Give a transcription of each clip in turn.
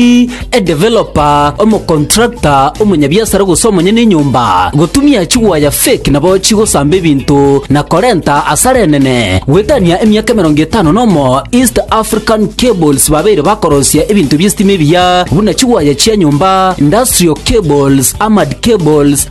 omorwoti, edevelopa, omokontrakta, omonyabiasara gose omonyene enyomba, gotumia chigwaya fake nabo chigosamba ebinto na korenta asara enene. Goetania emiaka emerongo etano nomo East African Cables babeire bakorosia ebinto bi'esitima ebiya buna chigwaya chia nyomba, industrial cables, armored cables,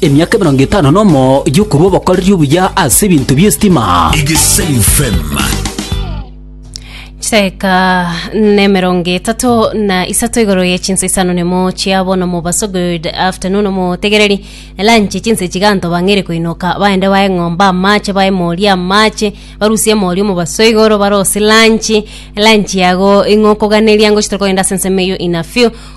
Emiaka emerongo etano nomo y'okorua obokoreri obuya ase ebinto bi'esitima. Egesayu FM. Cheka nemerongo etato na isato igoro ye chinsa isano nemo chia bono mobaso good afternoon omotegereri elanche chinsa chiganto bang'ere koinoka baende bae ng'omba amache bae mori amache barusie mori omobaso igoro barosi lanchi lanchi yago ing'okoganeria ngochitore kogenda ase ensemo eyo ina few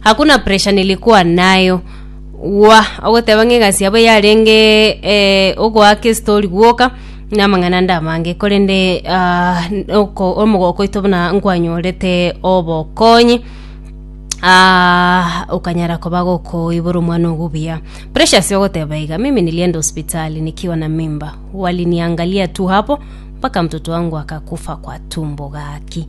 hakuna pressure nilikuwa nayo gwa ogoteba ng'a egasi yabo yarenge eh, ogoaka esitori gwoka na amang'ana nda amange korende ah, oko- omogoko oito buna nkwanyorete obokonyi Ah, ukanyara koba gokoibora omwana ogubuya precious ogoteba iga mimi nilienda hospitali nikiwa na mimba waliniangalia tu hapo mpaka mtoto wangu akakufa kwa tumbo gaki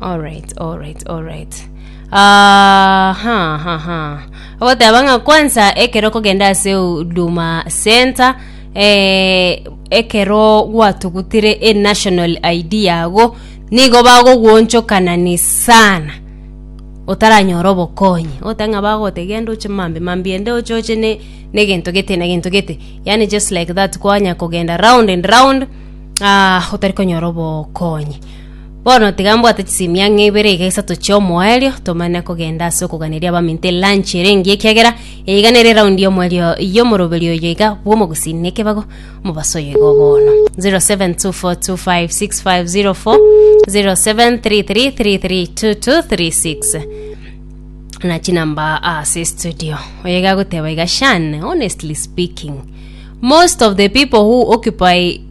Alright, alright, alright. Ah, ha, ha, ha. Ogoteba ng'a kwanza ekero kogenda ase Huduma Center eh, ekero gwatugutire e national ID yago nigo bagoguonchokana sana otaranyora obokonyi ote ng'a bagote genda oche mambi mambi ende oche oche ne ne gento gete na gento gete yani just like that kwanya kogenda round and round ah, otari konyora obokonyi Bono tiga mbwate chisimi ang'e ibere iga isato chi'omoerio, tomane kogenda ase okoganeria abaminto elanchi ere engiya ekiagera eiga nere eraundi y'omoerio y'omoroberio oyo iga bw'omogusii na ekebago omobaso oyo igo bono. 0724256504 0733332236 na chinamba ase studio oyo iga agoteba iga shan honestly speaking most of the people who occupy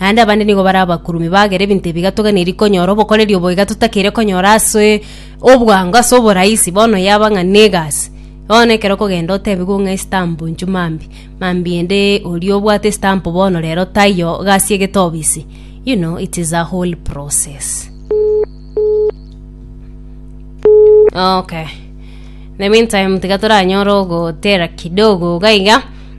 Naende abande nigo bare abakurumi bagere ebinto ebiga toganeiri konyora obokoreri obo iga totakeire konyora ase obwango ase oborahisi bono yaba ng'a negasi bono ekero okogenda otebigwe ng'a estamp nchio mambi mambi ende oria obwate estamp bono rero taiyo gasi egete obisi you know it is a whole process okay in the meantime tiga toranyore ogotera kidogo iga iga.